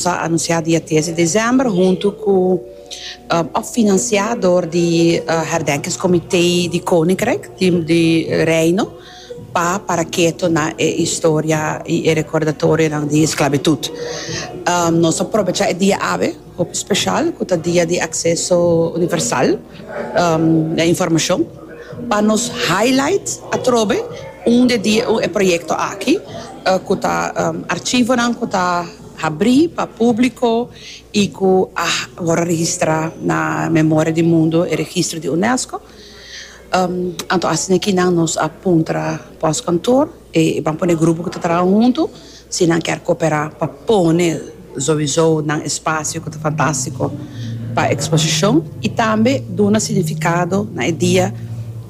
Ta anunsiá dia tres di desèmber huntu ku òf finansiá dor di Herdenkingskomité di Koninkryk di Reino pa Paraketo na e historia i e rekordatorionan di esklabitut. Nos ta probechá e dia awe hopi speshal ku ta dia di akseso universal na informashon pa nos highlight atrobe un di e proyekto aki ku ta arshivonan ku ta. Habrí pa públiko i ku a wòrdu registrá na Memoria di Mundo, e registro di Unesco. Anto asina e kinan nos a puntra pòskantoor, e ban pone e grupo ku ta traha huntu si nan kèr koperá pa pone souizou nan espasio ku ta fantástiko pa eksposishon i tambe duna signifikado na e dia.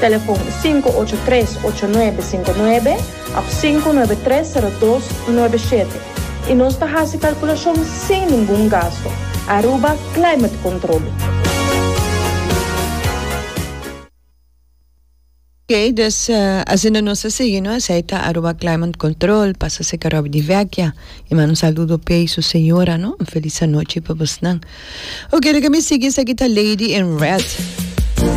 Telefon sinku ocho tres ocho nuebe sinku nuebe òf sinku nuebe tres sero dos nuebe shete i nos ta hasi kalkulashon sin ningun gastu. Aruba Climate Control. Ok, dus asina nos a sigui no. Esei ta Aruba Climate Control, pasa serka Robbie di Vecchia. E manda un saludo p'ei su señora no. Un felis anochi pa bosnan. Ok, laga mi sigui, esaki ta Lady in Red.